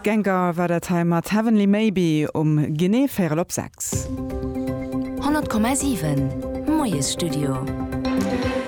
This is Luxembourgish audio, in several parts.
Gengar war dat hei mat Heavenly Maybe um genee véierel op sechs. 100,7 Moiesstudio.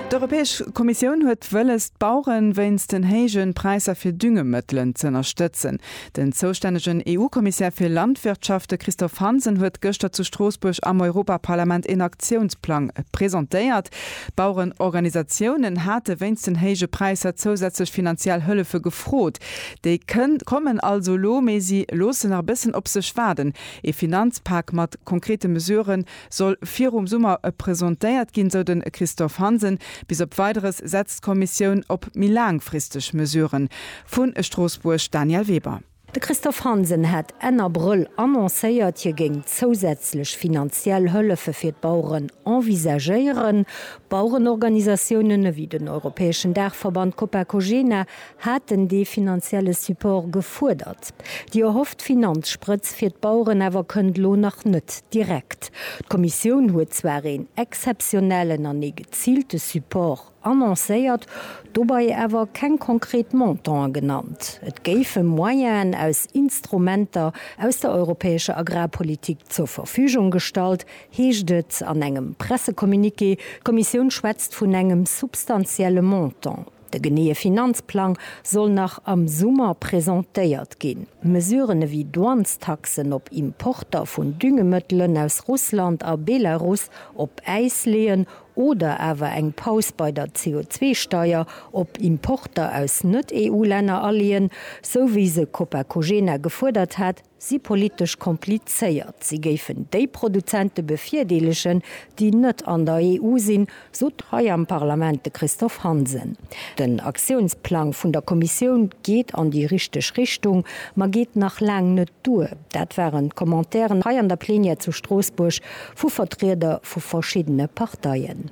D'Europäesch Kommissioun huet wëlles, d'Baueren wéinst den héijen Präisser fir Düngemëttelen z'ënnerstëtzen. Den zoustännegen EU-Kommissär fir Landwirtschaft, de Christophe Hansen, huet gëschter zu Stroossbuerg am Europaparlament een Aktiounsplang presentéiert. D'Bauerenorganisatiounen hate wéinst den héije Präisser zousätzlech finanziell Hëllefe gefrot. Déi kommen also elo, mee si loosse nach e bëssen op sech waarden. Ee Finanzpak mat konkrete Mesurë soll virum Summer presentéiert ginn, sou de Christophe Hansen. Bis op Weideres setzt d'Kommissioun op méi laangfristeg Mesuren. Vu Stroossbuerg Danièle Weber. De Christophe Hansen hat Enn Abrëll annoncéiert, hie géing zousätzlech finanziell Hëllefe fir d'Baueren envisagéieren. Bauerenorganisatiounen ewéi den europäeschen Daachverband Copacogena haten dee finanzielle Support gefuerdert. Déi erhofft Finanzsprëtz fir d'Baueren awer kënnt elo nach net direkt. D'Kommissioun huet zwar een exzeptionellen an ee geziilte Support. annoncéiert, dobei awer keng konkret Montanten genannt. Et géife Moyenen aus Instrumenter aus der europäescher Agrarpolitik zur Verfügung gestallt, heescht et an engem Pressecommuniqué. D'Kommissioun schwätzt vun engem substantielle Montant. De geneeë Finanzplang soll nach am Summer presentéiert ginn. Mesuren ewéi Douanestaxen op Importer vun Düngemëttelen aus Russland a Belarus op Äis leeën Oder awer eng Paus bei der CO2-Steier op Importer aus Net-EU-Länner aleeën, sou wéi se Copacogena gefuerdert hat, si politesch komplizéiert. Si géifen déi Produzente bevirdeelegen, déi net an der EU sinn, sot hei am Parlament de Christophe Hansen. Den Aktiounsplang vun der Kommissioun geet an déi richteg Richtung, ma geet nach laang net duer. Dat waren d'Commentairen hei an der Plenière zu Stroossbuerg vu Vertrieder vu verschiddene Parteien.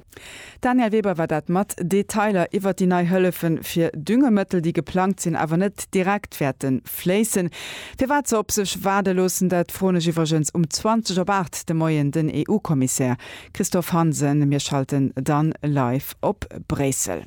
D'Danièle Weber war dat mat Detailer iwwert déi nei Hëllefe fir Düngemëttel, déi geplangt sinn, awer net direkt wäerte fléissen. Firwat se op sech waarde loossen, dat froen ech iwwregens um 20 op 8 de Moien den EU-Kommissär Christophe Hansen. Mir schalten dann live op Bréissel.